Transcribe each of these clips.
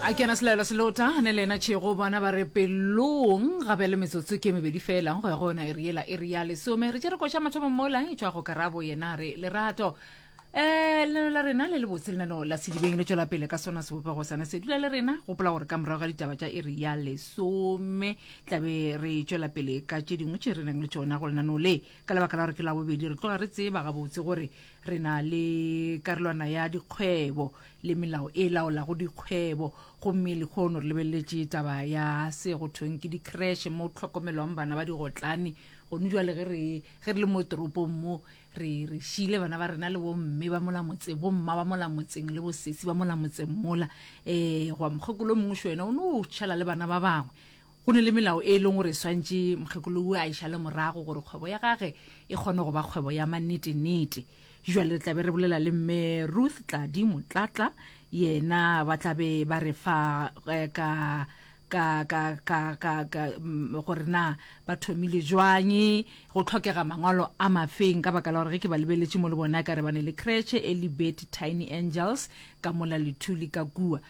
a kena selaelo se lota ne le ena tšhego bona ba re pelong ga bjale metsotso ke mebedi fela go ya go yona eri yela eri ya lesome re tše re koša mathomo mola e tšwa go karabo yena re lerato um eh, lenano la rena le le botse lenano la sedibeng le tšwela pele ka sona sebopego sane se dula le rena gopola gore ka morago ga ditaba tša iri ya lesome tlabe re tšwela pele ka tše dingwe tše re nang le tšona go lenano le ka lebaka la gore ke la bobedi re tloga re tseba gabotse gore Re na le karolwana ya dikgwebo le melao e laolago dikgwebo, gomme lehono re lebeleletše taba ya se go thweng ke dikreshe mo tlhokomelwang bana ba digotlane. Gonu jwale ge re ge re le mo toropong mo, re re šiile bana ba rena le bomme ba mola motseng, bomma ba mola motseng le bosesi ba mola motseng mola. Um gwa mokgekolo o mongwe šwena o no tšhela le bana ba bangwe. Go ne le melao e leng gore e swantše mokgekolo wo a e šale morago gore kgwebo ya gage e kgone go ba kgwebo ya mannete-nete. Bjale re tla be re bolela le Mme Ruth Tladi Motlatla, yena ba tla be ba re fa ka, ka, ka, ka, ka, ka, gore na ba thomile jwang, go tlhokega mangwalo a mafeng, ka baka la gore ge ke ba lebeletše mo le bone ekare ba ne le kretšhe e le Betty Tiny Angels ka mola Lithuli ka kua.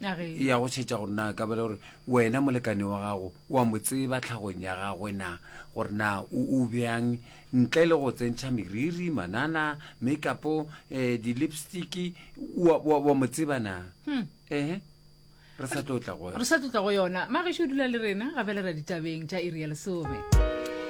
e ya go tšhetša gore na ka bele gore wena molekane wa gago wa mo tseba tlhagong ya gagwe na gore na o bjang ntle le go tsentšha meriri manana makeupo um eh, di-lipstick wa mo tseba na hmm. ehe re sa tlo tla go yona mage šo dula le rena ga fela ra ditabeng tša iri ya lesome